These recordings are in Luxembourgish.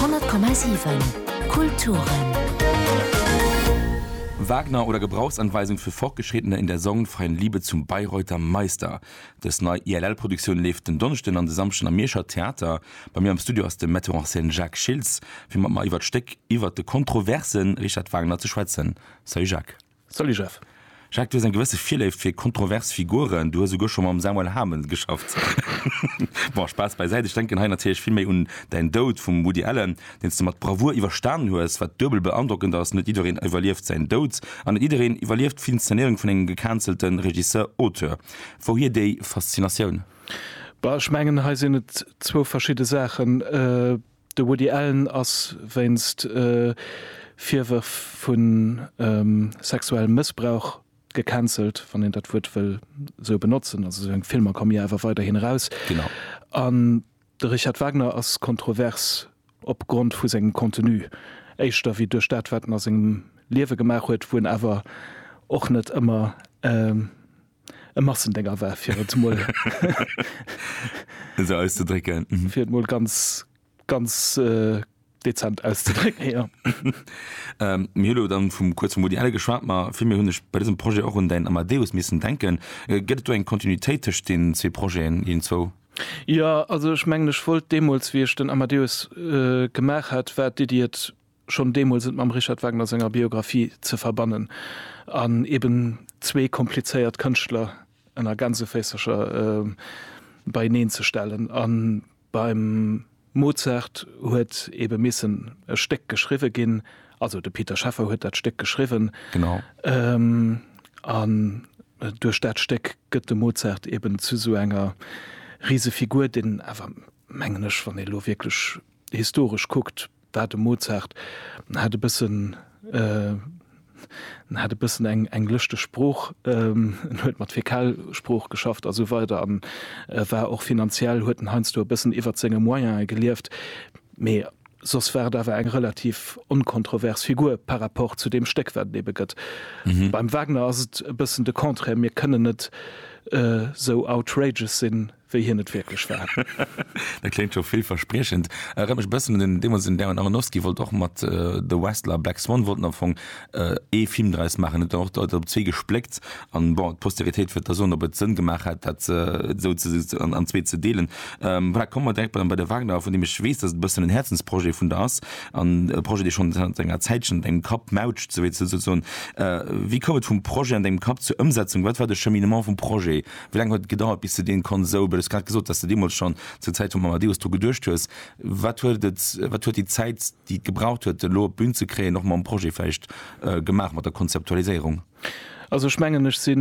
100,7 Kulturen. Wagner oder Gebrauchsanweisung für Fortgeschrittene in der sorgenfreien Liebe zum Bayreuther Meister. Dës nei ILL-Produktioun leeft den Donneschden an de Samschden am Mierscher Theater. Bei mir am Studio ass de Metteur en scène Jacques Schiltz, fir mat mer iwwert d'Stéck, iwwert de kontroverse Richard Wagner ze schwätzen. Salut Jacques. Salut Jeff. Jacques, du hues eng gewësse Virléift fir kontrovers Figuren, du hues souguer scho mam Samuel Hamel geschafft. Bon, Spaass bäisäit, ech denken hei natierlech vill méi un däin Doud vum Woody Allen, deen s du mat Bravour iwwerstanen hues. Wat duebel beandrockend ass, net jiddereen iwwerlieft säin Doud an net jiddereen iwwerlieft d'Inzenéierung vun engem gecancelt Regisseur, Auteur. Wouhier déi Faszinatioun? Bah, ech mengen, hei sinn et zwou verschidde Saachen. De Woody Allen ass wéinst Virwërf vu sexuellem Mëssbrauch gecancelt, wann een dat Wuert wëll esou benotzen. Also seng Filmer komme jo awer weiderhin eraus. Genau. An de Richard Wagner ass kontrovers opgrond vu sengem Contenu, éischter wéi duerch dat wat en a sengem Liewe gemaach huet, wou en awer och net ëmmer. E Massendénger war, fir et emol esou auszedrécken. Fir et emol ganz, ganz dezent auszedrécken, jo. Mir hu lo dann vum, kuerz vum Woody Allen geschwat, ma villméi hunn ech bei dësem Projet och un däin Amadeus missen denken. Gëtt et do eng Kontinuitéit tëscht deenen zwee Projeten, deenen zwou? Jo, also ech mengen, ech wollt deemools, wéi ech den Amadeus gemaach hat, war d'Iddi, et schonn deemools et mam Richard Wagner senger Biographie ze verbannen an eben zwee komplizéiert Kënschtler ënner Gänseféisercher beieneen ze stellen. A beim Mozart huet ebe missen e Stéck geschriwwe ginn, also de Peter Scheffer huet dat Stéck geschriwwen, an duerch dat Stéck gëtt de Mozart eben zu esou enger Risefigur, deen awer, mengen ech, wann ee lo wierklech historesch kuckt, war de Mozart, en hat e bëssen, en hat e bëssen eng, eng lëschteg Sprooch, en huet mat Fäkalsprooch geschafft a sou weider an e war och finanziell, huet en heiansdo e bëssen iwwert senge Moyen'e gelieft, mee soss war et awer eng relativ onkontrovers Figur par rapport zu deem Stéck, wat et ebe gëtt. Beim Wagner ass et e bëssen de Contraire, mir kënnen net sou outrageous sinn, wéi hien et wierklech war. Dat kléngt scho villverspriechend. Erënnert mech e bëssen un den, deemools den Darren Aronofsky wollt och mat The Wrestler a Black Swan wollten am Fong ee Film draus maachen, huet dann och d'Leit op zwee gespléckt an, bon, d'Posteritéit wäert da soen, ob et Sënn gemaach hätt, dat esou an zwee ze deelen. Voilà, komme mer direkt bei de Wagner, vun deem ech weess, dass et e bëssen en Häerzensprojet vun der ass an e Projet, dee schonn zanter enger Zäitchen an dengem Kapp mautscht, souwéi ze soen. Wéi koum et vum Projet an dengem Kapp zur Ëmsetzung? Wat war de Cheminement vum Projet Wéi laang huet et gedauert, bis de dee Konsou, du hues grad gesot, datt s de deemools schonn zur Zäit vum Amadeus dru geduecht hues, wat huet et, wat huet déi Zäit, déi et gebraucht huet, en elo op d'Bün ze kréien, och mam Projet vläicht gemaach, mat der Konzeptualiséierung? Also ech mengen, ech si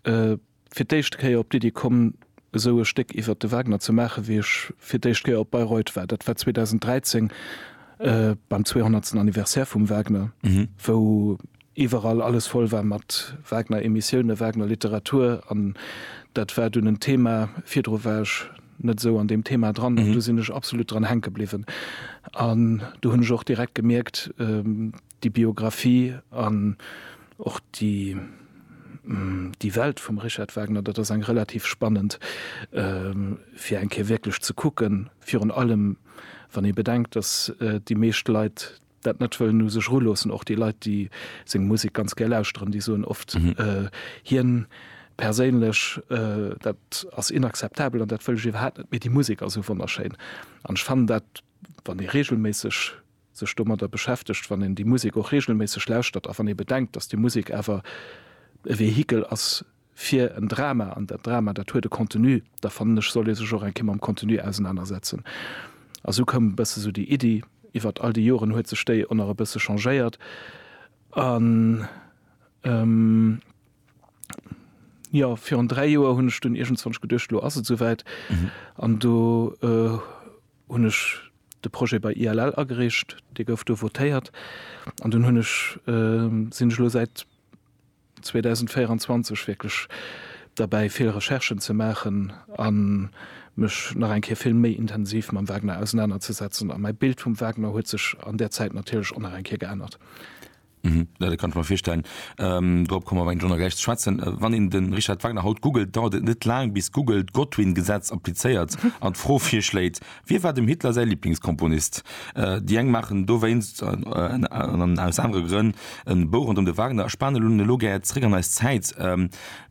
fir d'éischt Kéier op d'Iddi komm, esou e Stéck iwwert de Wagner ze maachen, wéi ech fir d'éischt Kéier op Bayreuth war. Dat war 2013 beim 200. Anniversaire vum Wagner, wou iwwerall alles voll war mat Wagner Emissiounen, Wagner Literatur an dat war dunn en Thema, virdru war ech net esou an deem Thema dran an do sinn ech absolut dran hänke bliwwen an do hunn ech och direkt gemierkt déi Biographie an och déi déi Welt vum Richard Wagner, dat ass eng relativ spannend fir eng Kéier wierklech ze kucken, virun allem wann ee bedenkt, datt déi meescht Leit dat net wëllen u sech eruloossen. Och déi Leit, déi seng Musek ganz gär lauschteren, déi soen oft, hien perséinlech, dat ass inakzeptabel an dat wëll ech iwwerhaapt net, mee déi Musek ass esou wonnerschéin. An ech fannen dat, wann ee reegelméisseg sech domadder beschäftegt, wann een déi Musek och reegelméisseg lauschtert a wann ee bedenkt, datt déi Musek awer e Vehikel ass fir en Drama, an dat Drama, dat huet e Contenu, da fannen ech, soll ee sech och eng Kéier mam Contenu ausenanersetzen. A esou koum e bësse sou déi Iddi. Iwwert all déi Joren huet sech déi oner e bësse changéiert an, jo, virun dräi Joer hunn ech dunn iergendzwanch geduecht, elo ass et esouwäit an do hunn ech de Projet bei ILL agereecht, dee gouf do votéiert an dunn hunn ech, sinn ech elo säit, 2024 wierklech derbäi vill Recherchen ze maachen a mech nach eng Kéier vill méi intensiv mam Wagner ausenaner ze setzen. A mäi Bild vum Wagner huet sech an där Zäit natierlech och nach eng Kéier geännert. Mhm, ja dat kann ech mer virstellen. Dorop komme mer awer eng Journée gläich ze schwätzen. Wann een de Richard Wagner haut googelt, dauert et net laang bis Google d'Godwin-Gesetz applizéiert an d'Fro virschléit, Wie war dem Hitler säi Liblingskomponist? Déi eng maachen dowéinst, an aus anere Grënn, e Bou ronderëm de Wagner a spanen un elo gär zeréck an eis Zäit.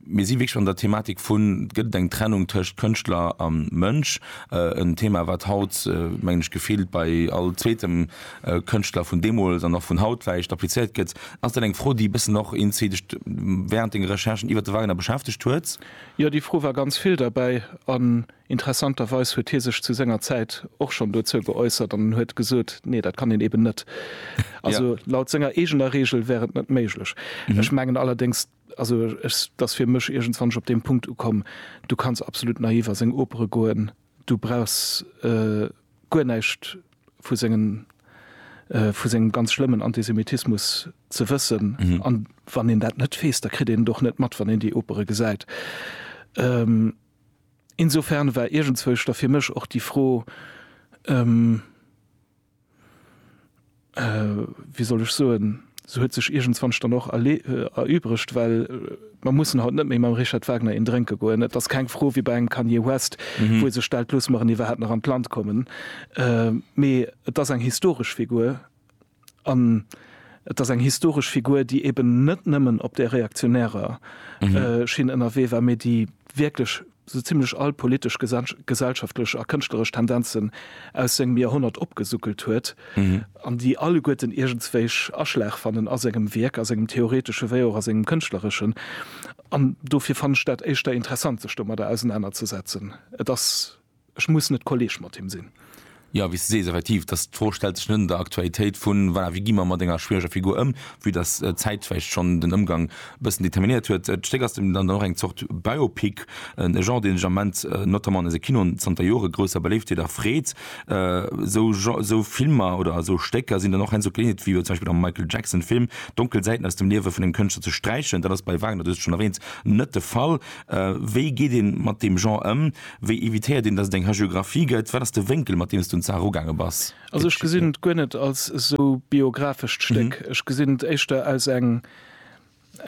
Mir si wierklech an der Thematik vun, gëtt et eng Trennung tëscht Kënschtler a Mënsch? En Thema wat haut, mengen ech, gefillt bei all zweetem Kënschtler vun deemools an och vun haut vläicht applizéiert gëtt. Ass dat eng Fro déi bëssen och Inti dech wärend denge Recherchen iwwert de Wagner beschäftegt huet? Jo, déi Fro war ganz vill derbäi. Interessanterweis huet hie sech zu senger Zäit och schonn dozou geäussert an en huet gesot, nee, dat kann een eben net. Also laut senger eegener Reegel wär et net méiglech. Ech mengen allerdéngs, also ech, dass fir mech iergendswannech op deem Punkt ukomm, du kanns absolut naiv a seng Opere goen, du brauchs guer näischt vu sengen, vu sengem ganz schlëmmen Antisemitismus ze wëssen. An wann een dat net weess, da kritt een et och net mat, wann een déi Opere gesäit. Insofern war iergendzwousch da fir mech och déi Fro, wéi soll ech soen, se huet sech iergendzwanch dann och erübregt, well mer mussen haut net méi mam Richard Wagner een drénke goen. Et ass keng Fro wéi bei engem Kanye West, wou e sech stellt, Loosse mer en iwwerhaapt nach an d'Land kommen? Mee et ass eng historesch Figur. An et ass eng historesch Figur, déi eben net nëmmen op där reaktionärer Schinn ënnerwee war, mee déi wierklech esou zimlech all politesch, gesellschaftlech a kënschtleresch Tendenzen aus sengem Joerhonnert opgesuckelt huet an déi alleguerten iergendswéich Aschlag fannen a sengem Wierk, a sengem theoretesche wéi och a sengem kënschtlereschen. An dofir fannen ech dat éischter interessant, sech domadder ausenanerzesetzen. Et ass Ech muss net Kolleg mat him sinn. Jo, wéi s de sees, effektiv, dass d'Fro stellt sech net an der Aktualitéit vu, voilà, wéi gi mer mat enger schwiereger Figur ëm, vue dass d'Zäit vläicht schonn den Ëmgang e bëssen determinéiert huet. D'Stéck ass deemno dann och eng Zort Biopic, e Genre, deen sech am Moment notamment an eise Kinoen zanter Jore grousser Beléiftheet erfreet. Esou Filmer oder esou Stécker sinn dann och heiansdo d'Geleeënheet, wéi jo zum Beispill am Michael Jackson-Film, donkel Säiten aus dem Liewe vun engem Kënschtler ze sträichen. Dat ass bei Wagner, du hues et schonn erwähnt, net de Fall. Wéi geet ee mat deem Genre ëm? Wéi evitéiert een, datt et eng Hagiographie gëtt? Wat ass de Wénkel, mat deem s de un d'Saach erugaange bass? Also ech gesinn et guer net als esou biographescht Stéck. Ech gesinn et éischter als eng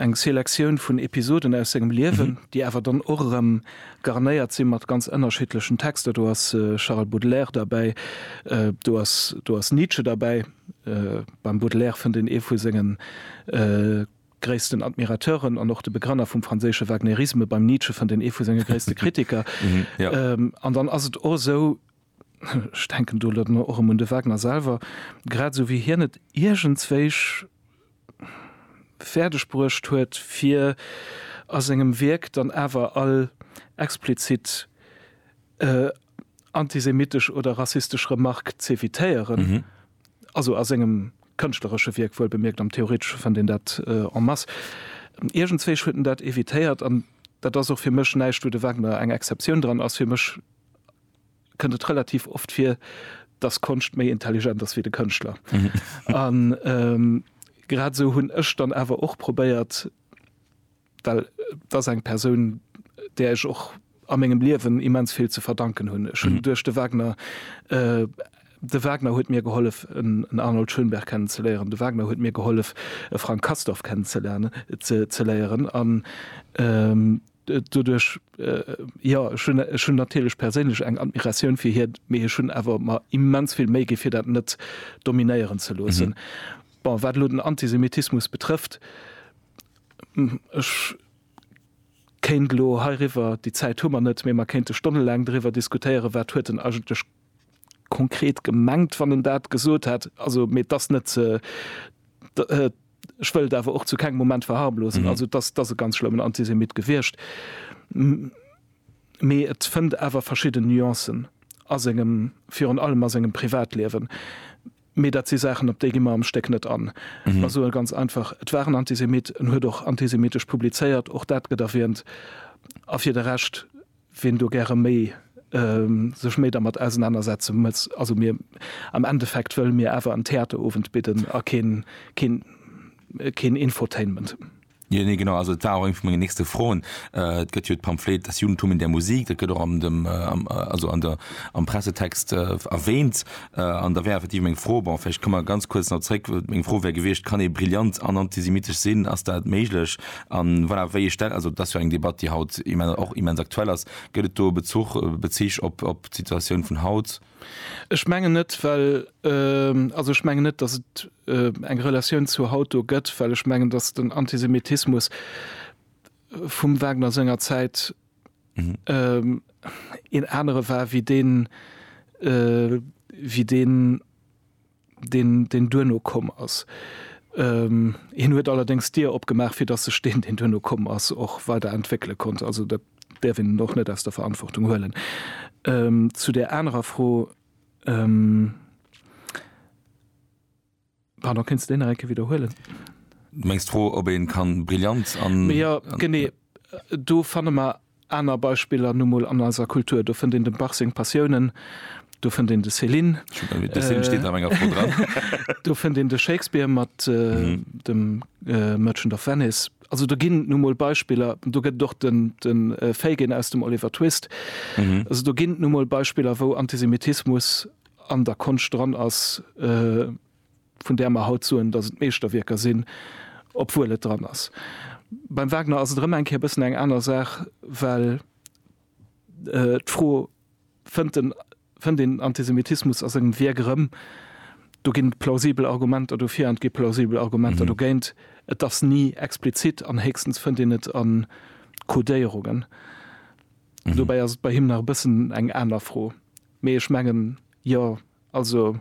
eng Selektioun vun Episoden aus sengem Liewen, déi awer dann och erëm garnéiert si mat ganz ënnerschiddlechen Texter. Do ass Charles Baudelaire derbäi, do ass do ass Nietzsche derbäi. Beim Baudelaire fënnt een ee vu sengen. gréissten Admirateuren an och de Begrenner vum franséische Wagnerisme, beim Nietzsche fënnt een ee vu senge gréisste Kritiker. An dann ass et och esou, ech denken do elo och erëm un de Wagner selwer, grad esou wéi hien et iergendswéich fäerdeg bruecht huet, fir a sengem Wierk dann awer all explizit antisemitesch oder rassistesch Remark z'evitéieren, also a sengem kënschtleresche Wierk wuel bemierkt, am theoretesche fënnt een dat en masse. Iergendzwésch huet en dat evitéiert an dat ass och fir mech näischt, wou de Wagner eng Exceptioun dran ass. Fir mech kënnt et relativ oft vir, datt Konscht méi intelligent ass wéi de Kënschtler. An grad esou hunn ech dann awer och probéiert, well et ass eng Persoun, där ech och a mengem Liewen immens vill ze verdanken hunn. Ech hunn duerch de Wagner, de Wagner huet mir gehollef, en Arnold Schönberg kennenzeléieren, de Wagner huet mir gehollef, e Frank Castorf kennenzeléieren an doduerch, jo, ech hunn, ech hunn natierlech perséinlech eng Admiratioun fir hien, mee ech hunn awer mer immens vill Méi gi fir dat net dominéieren ze loossen. Bon, wat elo den Antisemitismus betrëfft, Ech kéint elo heiriwwer, déi Zäit hu mer net, mee mer kéinte stonnelaang doriwwer diskutéieren, wat huet en eigentlech konkret gemengt, wann en dat gesot hätt. Also, mee et ass net, ech wëll et awer och zu kengem Moment verharmlosen, also et ass, et ass e ganz schlëmmen Antisemit gewiescht, mee et fënnt awer verschidden Nuancen a sengem, virun allem a sengem Privatliewen. Mee dat si Saachen, op déi gi mer am Stéck net an. Mer soe ganz einfach, Et war en Antisemit, en huet och antisemitesch publizéiert, och dat gëtt erwähnt. A fir de Rescht, ween do gäre méi sech méi dermat ausenanersetze mëtz, also mir, am Endeffekt wëlle mir awer en Theaterowend bidden a keen, keen, keen Infotainment. Jo, nee, genau, also et war och eng vu mengen nächste Froen. Et gëtt jo d'Pamphlet Das Judentum in der Musik, dat gëtt och am dem also an der am Pressetext erwähnt an da wär effektiv meng Fro, bon vläicht komme mer ganz kuerz nach zréck, meng Fro wär gewiescht, kann ee brillant an antisemittesch sinn, ass dat méiglech? A voilà, wéi ee stellt, also et ass jo eng Debatt, déi haut och immens aktuell ass, gëtt et do e Bezuch, Bezich op d'Situatioun vun haut? Ech mengen net, well, also ech mengen net, datt et eng Relatioun zur haut do gëtt, well ech mengen, datt den Antisemitismus vum Wagner senger Zäit een anere war wéi deen, wéi deen, deen, deen duerno komm ass. Ähm, hien huet allerdéngs d'Dier opgemaach, fir datt sech deen, deen duerno komm ass, och weider entwéckele konnt. Also dat däerf een och net aus der Verantwortung huelen. Ähm, zu där anerer Fro, ähm, pardon, kéints de déi nach eng Kéier widderhuelen? Du mengs d'Fro, ob ee kann brillant an. Mee jo, genee, do fanne mer Aner Beispiller nu mol an eiser Kultur, do fënnt een dem Bach seng Passiounen, do fënnt een de Céline, do fënnt een de Shakespeare mat dem Merchant of Venice. Also do ginn nu mol Beispiller, do gëtt et och de Fagin aus dem Oliver Twist. Also do ginn nu mol Beispiller, wou Antisemitismus an der Konscht dran ass. vun där mer haut soen, dass et Meeschterwierker sinn, obwuel et dran ass. Beim Wagner ass et erëm eng Kéier e bëssen eng aner Saach, well d'Fro, Fënnt en, fënnt een Antisemitismus a sengem Wierk erëm? Do ginn et plausibel Argumenter dofir an et gi plausibel Argumenter dogéint. Et ass ni explizit an héchstens fënnt een et a Codéierungen. Dobäi ass et bei him nach e bëssen eng aner Fro. Mee ech mengen, jo, Also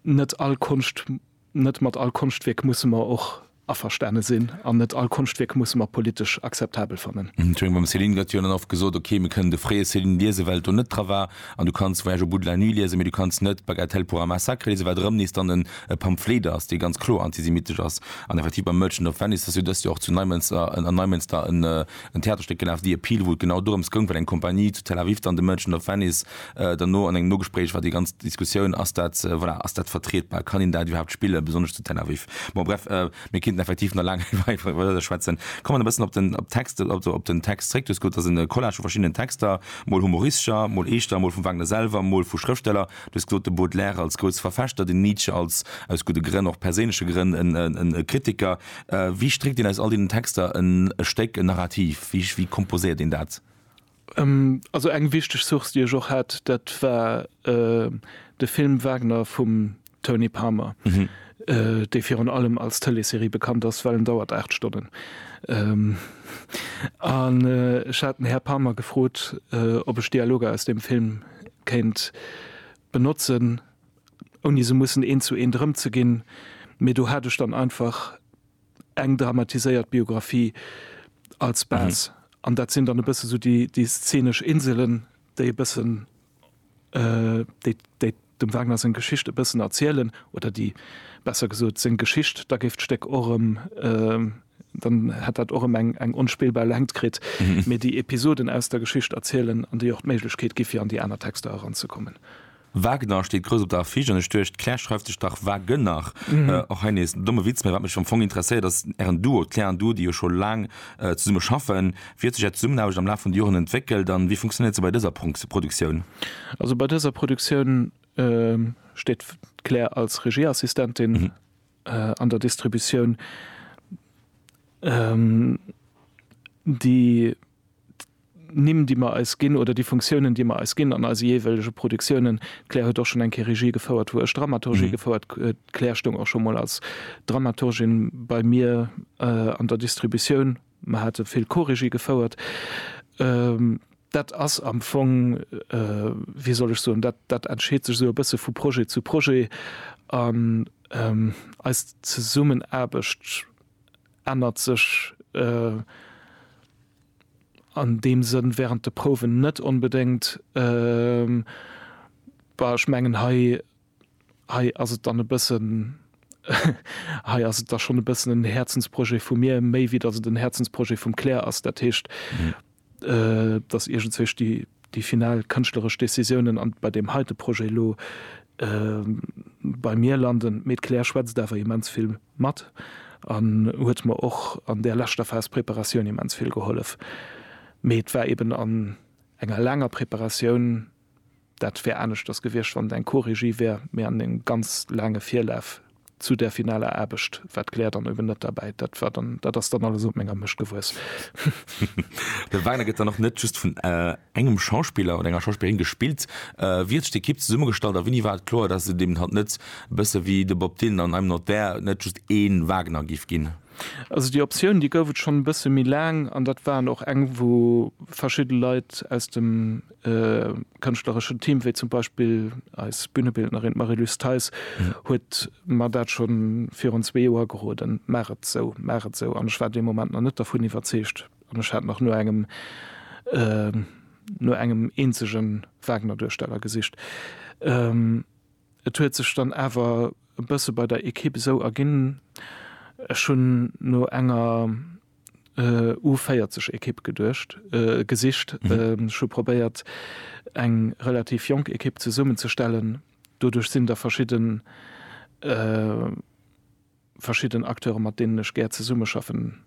net all Konscht, net mat all Konschtwierk musse mer och averstane sinn an net all Konschtwierk musse mer politesch akzeptabel fannen. Ech menge mam Céline gëtt jo dann oft gesot, ok mir kënnen de fréie Céline liesen, well do net dra war, an du kanns Voyage au bout de la nuit liesen, mee du kanns net Bagatelle pour un massacre liesen, wat erëm nees dann en e Pamphlet ass, dee ganz kloer antisemittesch ass. An effektiv beim Merchant of Venice ass jo dëst Joer och zu Neimënster, an Neimënster en, En Theaterstéck gelaf, The Appeal, wou et genau dorëms goung, wat eng Kompanie zu Tel Aviv dann, The Merchant of Venice, dann no an engem Nogespréich war déi ganz Diskussioun, ass dat, voilà, ass dat vertrietbar, kann een dat iwwerhaapt spillen, besonnesch zu Tel Aviv? Bon, bref, mir kéinten effektiv nach laang weider schwätzen. Kommen e bëssen op den, op d'Texte, also op den Text zréck. Du hues gesot, et ass e Collage vu verschiddenen Texter, mol humoristescher, mol eeschter, mol vum Wagner selwer, mol vu Schrëftsteller. Du hues gesot, de Baudelaire als grouse Verfechter, den Nietzsche als, aus gudde Grënn, och perséinleche Grënn, e Kritiker. Wéi stréckt een aus all deenen Texter en Stéck, en Narrativ? Wéi komposéiert een dat? Also eng wichteg Source, déi ech och hat, dat war de Film Wagner vum Tony Palmer, dee virun allem als Tëleeserie bekannt ass, well en dauert 8 Stonnen. An ech hat den Här Palmer gefrot, ob ech Dialoger aus deem Film kéint benotzen. ouni se mussen een zu een drëmzeginn, mee do hat ech dann einfach eng dramatiséiert Biographie als Base. An dat sinn dann e bësse sou déi, déi szenesch Inselen, déi e bëssen, déi, déi dem Wagner seng Geschicht e bëssen erzielen, oder déi, besser gesot, seng Geschicht, da géif d'Stéck och erëm, dann hätt dat och erëm eng, eng onspillbar Längt kritt, mee déi Episoden aus der Geschicht erzielen, an déi och d'Méiglechkeet gi fir an déi aner Texter eranzekommen. Wagner steet grouss op der Affiche an ech duecht, d'Claire schreift sech dach Wagener. Och hei nees en domme Witz, mä wat mech am Fong interesséiert ass ären Duo, d'Claire an du, déi jo scho laang zesumme schaffen. Wéi huet sech är Zesummenaarbecht am Laf vun de Joren entwéckelt an wéi funktionéiert se bei dëser Produktioun? Also bei dëser Produktioun steet d'Claire als Regieassistentin an der Distributioun, déi d'Nimm, déi mer eis ginn, oder déi Funktiounen, déi mer eis ginn an eise jeeweilege Produktiounen. D'Claire huet och schonn eng Kéier Regie gefouert, wou ech Dramaturgie gefouert. D'Claire stoung och scho mol als Dramaturgin bei mir an der Distributioun. Mer hate vill Co-Regie gefouert. Dat ass am Fong, wéi soll ech soen, dat, dat entscheet sech esou e bësse vu Projet zu Projet. An eis Zesummenaarbecht. ännert sech an deem Sënn während de Prouwen net onbedéngt. Bah, ech mengen, hei, hei ass et dann e bëssen, hei ass et da schonn e bëssen en Häerzensprojet vu mir, méi wéi datt et en Häerzensprojet vum Claire ass. Dat heescht, dass iergendzwésch déi final kënschtleresch Décisiounen an bei deem heite Projet elo bei mir landen. Mee d'Claire schwätzt awer immens vill mat an huet mer och an där leschter Phas Preparatioun immens vill gehollef. Mee et war eben an enger laanger Preparatioun, Dat wär aneschters gewiescht, wann et eng Co-Regie wär. Mir haten e ganz laange Virlaf zu där finaler Aarbecht, wat d'Claire dann eben net derbäit. Dat war dann, dat ass dann alles op menger Mécht gewuess. De Wagner gëtt dann och net just vun engem Schauspiller oder enger Schauspillerin gespillt. Wéi huet sech d'Ekipp zesummegestallt a wéini war et kloer, dass et eben hatt net, e bësse wéi de Bob Dylan an I'm Not There, net just ee Wagner géif ginn? Also déi Optioun, déi gouf et schonn e bësse méi laang an dat waren och eng, wou verschidde Leit aus dem kënschtlereschen Team, wéi zum Beispill eis Bühnebildnerin Marie-Luce Theis, huet mer dat scho virun zwee Joer geroden, Maach et esou, maach et esou. An ech war dee Moment nach net dervun iwwerzeegt an ech hat nach no engem, no engem eenzege Wagner-Duersteller gesicht. Et huet sech dann awer e bësse bei der Ekipp esou erginn, ech hunn no enger, U40 Ekipp geduecht, gesicht. Ech hu probéiert eng relativ jonk Ekipp zesummen ze stellen. Doduerch sinn der verschidden verschidden Acteure mat deenen ech gär zesummeschaffen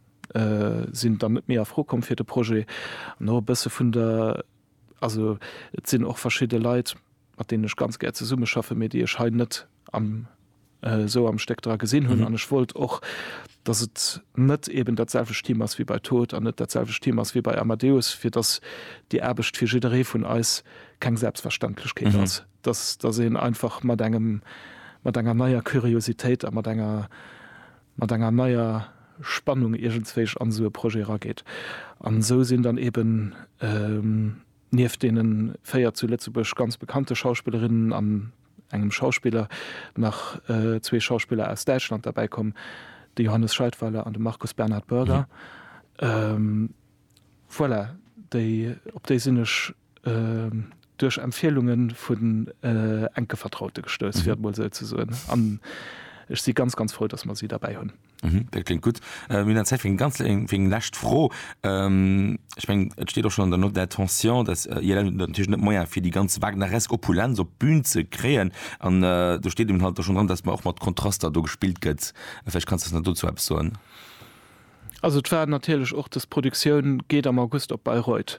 sinn dann net méi a Fro komm fir de Projet. No e bësse vun der also et sinn och verschidde Leit, mat deenen ech ganz gär zesummeschaffe mee déi ech hei net esou am Stéck dra gesinn hunn. An ech wollt och, datt et net eeben datselwecht Team ass wéi bei Tod an net datselwecht Team ass wéi bei Amadeus, fir datt déi Aarbecht fir jidderee vun eis keng Selbstverständlechkeet ass, datt een einfach mat engem, mat enger neier Curiositéit a mat enger, mat enger neier Spannung iergendswéich an esou e Projet erageet. An esou sinn dann eeben. Nieft deenen 4 zu Lëtzebuerg ganz bekannte Schauspillerinnen an engem Schauspiller nach zwee Schauspiller aus Däitschland derbäi komm, de Johannes Scheidweiler an de Markus Bernhard Börger. Voilà, déi, op déi sinn ech duerch Empfielunge vun enke Vertraute gestouss, fir et emol esou ze soen, an ech si ganz, ganz frou, dass mer si derbäi hunn. Mhm, dat klingt gutt. Mir hunn an Zäit fir eng ganz eng fir eng lescht Fro. Ähm, ech meng, et steet och schon an der Note d'intention, dass äh, ILM huet natierlech net Moyen fir déi ganz wagneresk Opulenz op d'Bün ze kréien an äh, do steet eben halt da schon dran, dass mer och mat Kontraster do gespillt gëtt. Vläicht kanns du eis nach dozou eppes soen. Also et war natierlech och, dass d'Produktioun geet am August op Bayreuth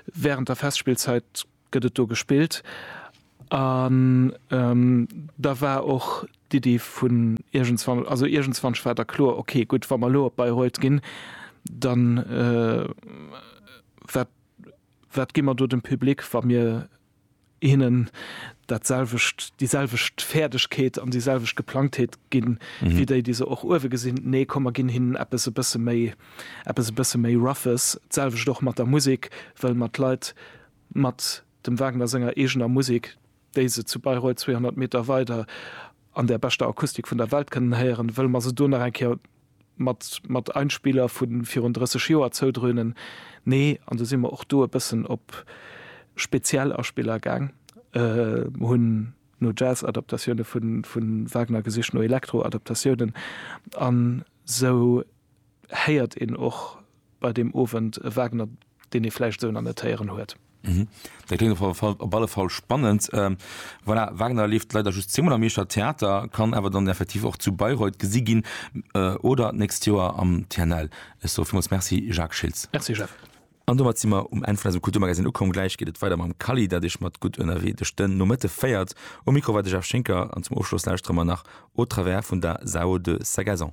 während der Festspillzeit. gëtt et do gespillt an da war och d'Iddi vun iergendswann, also iergendswannch war da kloer, ok, gutt, wa mer elo op Bayreuth ginn, da wat, wat gi mer do dem Public, wa mir hinnen dat selwecht, déi selwecht Fäerdegkeet an déi selwecht Geplangtheet ginn, wéi déi, déi se och uewe gesinn? Nee, komm, mer ginn hinnen eppes e bësse méi, eppes e bësse méi Roughes. D'selwecht och mat der Musek, wëll mer d'Leit Mat dem Wagner senger eegener Musek, déi se zu Bayreuth 200 Meter weider an där beschter Akustik vun der Welt kënnen héieren, wëlle mer se do nach eng Kéier mat mat Einspieler vu virun 30 Joer zoudrönen. Nee, an du si mer och do e bëssen op speziell Aspiller gaang, hunn no Jazz-Adaptatioune vu Wagner gesicht, no Elektro-Adaptatiounen an sou. héiert een och bei deem Owend e Wagner, deen ee vläicht esou nach net héieren huet. Dat kléngt op alle Fall spannend. Voilà, Wagner leeft leider just zweemol am Mierscher Theater, kann awer dann effektiv och zu Bayreuth gesi ginn oder d'nächst Joer am TNL. Ech soe villmools Merci, Jacques Schiltz. Merci, Jeff. An domat si mer um Enn vun eisem Kulturmagazine ukomm. Gläich geet et weider mam Kally, dat Iech mat Gutt ënnerwee duerch den Nomëtte féiert. Um Mikro war de Jeff Schinker an zum Ofschloss lauschtere mer nach Au travers vun der Zao de Sagazan.